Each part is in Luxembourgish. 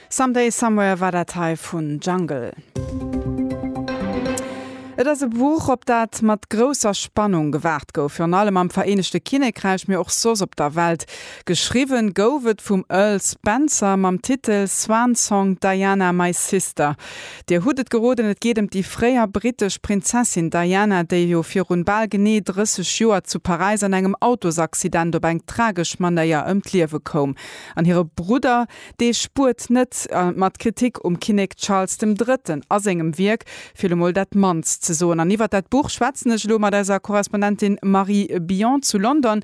Some Day Somewhere war dat hei vun Jungle. Et ass e Buch, op dat mat grousser Spannung gewaart gouf. Virun allem am Vereenegte Kinnekräich, mee och soss op der Welt. Geschriwwe gouf et vum Earl Spencer mam Titel Swan Song Diana, My Sister. Dir hutt et geroden, et geet ëm déi fréier brittesch Prinzessin Diana, déi jo virun bal genee 30 Joer zu Paräis an engem Autosaccident op eng tragesch Manéier ëm d'Liewe koum. An hire Brudder, dee spuert net, mat Kritik um Kinnek Charles dem Drëtten a sengem Wierk fir lo mol dat mannst ze soen. An iwwert dat Buch schwätzen ech elo mat eiser Korrespondentin Marie Billon zu London.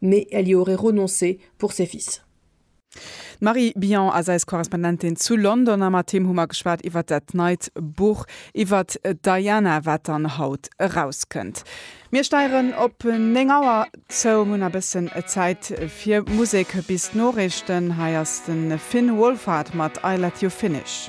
mais elle y aurait renoncé pour ses fils. D'Marie Billon ass eis Korrespondentin zu London a mat him hu mer geschwat iwwert dat neit Buch iwwert d'Diana, wat dann haut erauskënnt. Mir steieren op 9 Auer zou, hunn e bëssen Zäit fir Musek bis d'Noriichten. Hei ass de Finn Wolfhard mat I Let You Finish.